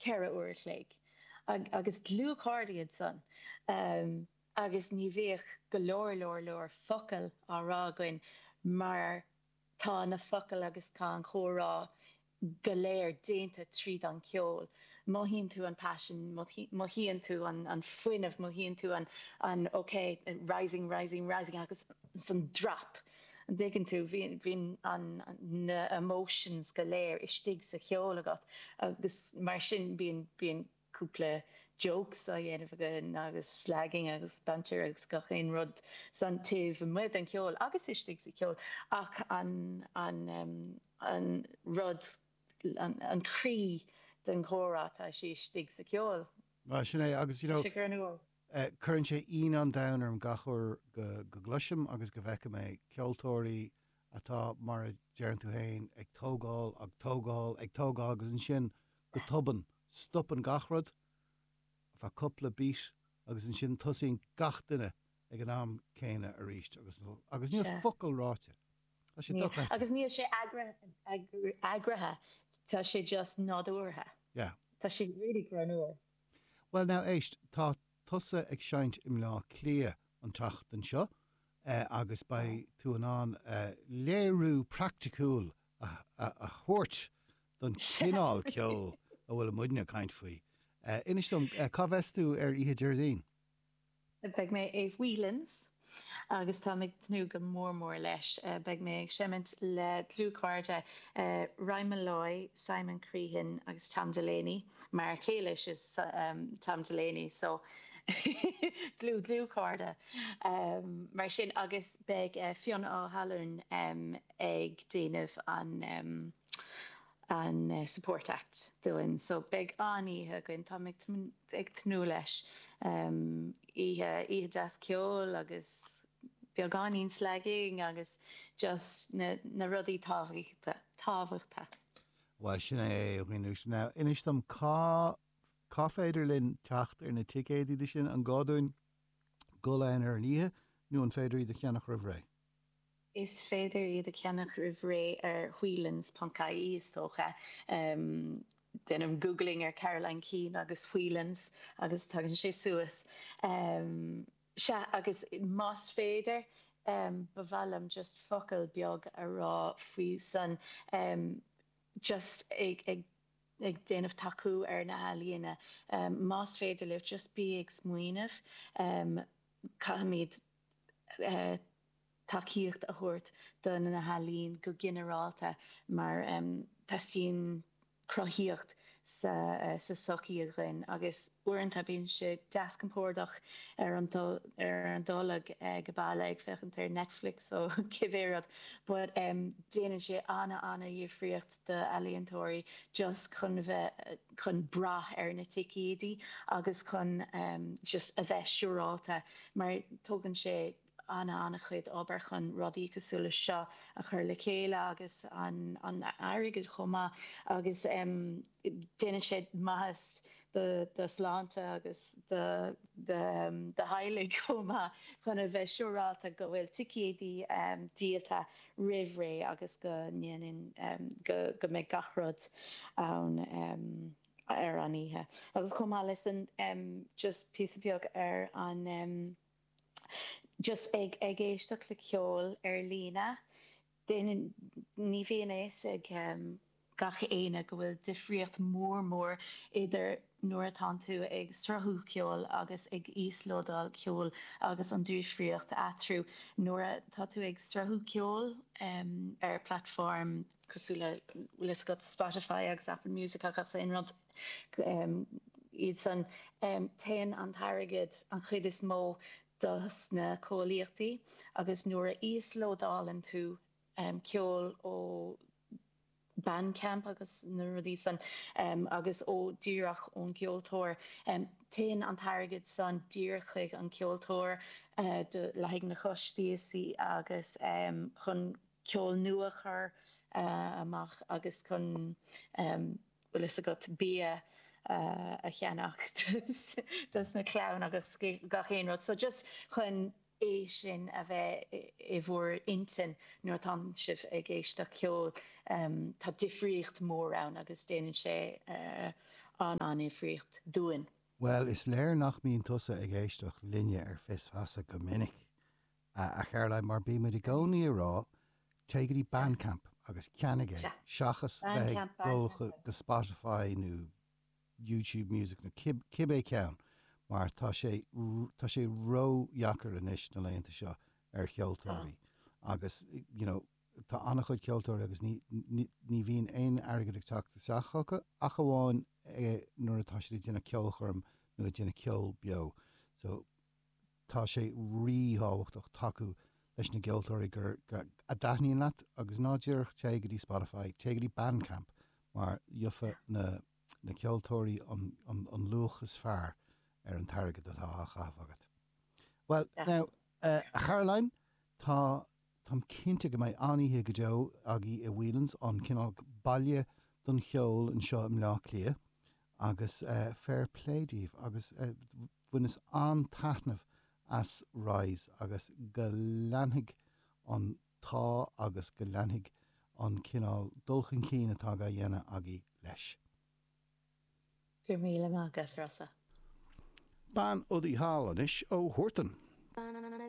ceithre uair a chloig agus dlúthchairde iad san agus ní bhíodh go leor leor leor focal á rá againn mar tá na focail agus tá an comhrá go léir déanta tríd an cheol. Mothaíonn tú an paisean, mothaíonn tú an fuinneamh, mothaíonn tú an, OK, rising, rising, rising agus an drop. An dtuigeann tú, bíonn na emotions go léir istigh sa cheol agat agus mar sin bíonn cúpla jokes á dhéanamh againn agus slagging agus banter agus gach aon rud san taobh amuigh den cheol agus istigh sa cheol ach an rud, an croí den gcomhrá tá sé istigh sa cheol. Sin é agus you know. Cuireann sé ionadh an domhain orm gach uair go gcloisim agus go bhfeicim é, ceoltóirí atá, mar a deireann tú fhéin, ag tógáil, ag tógáil, ag tógáil agus ansin go tobann, stopann gach rud, ar feadh cúpla beat agus ansin tosaíonn gach duine ag an am céanna arís agus, agus níl focal ráite. Tá sé dochreidte. Agus níl sé eagraithe, tá sé just nádúrtha. Yeah. Tá sé really draíochtúil. Bhuel now, éist, tá tusa ag seinnt i mBleá Cliath an tseachtain seo agus beidh tú in ann léiriú praiticiúil a thabhairt don chineál ceoil a bhfuil muidne ag caint faoi. Inis dom, cá mbeas tú ar oíche Déardaoin? Beidh mé i Whelan's agus táim ag tnúth go mór mór leis. Beidh mé ag seimint le dlúthchairde Ryan Molloy, Simon Crehan agus Tom Delany, m'fhear céile is ea Tom Delany so dlúth dlúthchairde mar sin agus beidh Fionn Ó hAlmhain ag déanamh an an Support Act dúinn. So beidh an-oíche againn, táim ag ag tnúth leis. Oíche oíche deas ceoil agus beagáinín slagging agus just na na rudaí tábhaíchta tábhachta. Bhuel sin é anois. Now inis dom cá cá féidir linn teacht ar na ticéid dó sin? An gá dúinn dul ann ar an oíche nó an féidir iad a cheannach roimh ré? Is féidir iad a cheannach roimh ré ar Whelan's ponc ie, is dócha. Déanamh googling ar Caroline Keane agus Whelan's agus tagann sé suas. Sea, agus más féidir, ba mhaith liom just focal beag a rá faoi san, just ag déanamh tacú ar na healaíona. Más féidir libh, just bí ag smaoineamh, caithfimid tacaíocht a thabhairt do na healaíon go ginearálta mar teastaíonn cruthaíocht sa tsochaí againn agus uaireanta bíonn sé deas compordach gan dul as baile ag féachaint ar Netflix nó cibé rud but déanann sé an-an-difríocht d'ealaíontóirí just chun a bheith chun brath ar na ticéidí agus chun just a bheith siúráilte mar tógann sé ana ana chuid obair chun rudaí cosúil leis seo a chur le chéile agus an airgead chomh maith agus déanann sé maitheas do do shláinte agus do do do theaghlach chomh maith chun a bheith siúráilte go bhfuil ticéidí díolta roimh ré agus go ndéanann go go mbeidh gach rud ann ar an oíche agus chomh maith leis sin just píosa beag ar an just ag ag éisteacht le ceol ar líne Ní bhíonn a fhios ag gach éinne go bhfuil difríocht mhór mhór idir nuair atá tú ag sruthú ceoil agus ag íoslódáil ceoil agus an difríocht eatrhu. Nuair atá tú ag sruthú ceoil ar platform cosúil le bhfuil fhios agat Spotify agus Apple Music agus gach aon rud iad san, téann an t-airgead an chuid is mó dos na comhlachtaí agus nuair a íoslódálann tú ceol ó Bandcamp agus na rudaí san agus ó díreach ón gceoltóir, téann an t-airgead san díreach chuig an gceoltóir le haghaidh na costaisí agus chun ceol nua a chur amach agus chun. bhfuil fhios agat, bia a cheannach dos na clann agus gach aon rud so just chun é sin a bheith i bhur intinn nuair atánn sibh ag éisteacht le ceol tá difríocht mór ann agus déanann sé an-an-difríocht dúinn. Bhuel, is léir nach mbíonn tusa ag éisteacht linne ar Fios Feasa go minic! A Charoline, mar bímid i gcónaí ag rá, téigh go dtí Bandcamp agus ceannaigh é seachas bheith ag dul go Spotify nó YouTube Music nó cibé ceann mar tá sé, tá sé ródheacair anois na laethanta seo ar cheoltóirí agus you know tá an-chuid ceoltóirí agus ní, ní bhíonn aon airgead ag teacht isteach chucu ach amháin nuair atá siad ag déanamh ceolchoirm nó ag déanamh ceol beo so. Tá sé ríthábhachtach tacú leis na gceoltóirí a dtaitníonn leat agus ná díreach téigh go dtí Spotify, téigh go dtí Bandcamp mar gheobhaidh na ceoltóirí an luach is fearr ar an t-airgead atá á chaitheamh agat. Bhuel, now, a Chaitlín, tá. Táim cinnte go mbeidh an-oíche go deo agaí i Whelan's, an cineál baile don cheol anseo i mBleá Cliath agus fair play daoibh agus bhaineas an-taitneamh as Rise agus go leanfaidh an t-ádh agus go leanfaidh an cineál dul chun cinn atá dhá dhéanamh agaí leis. Go raibh míle maith agat, Rossa. Bean udaí thall anois ó Huartan.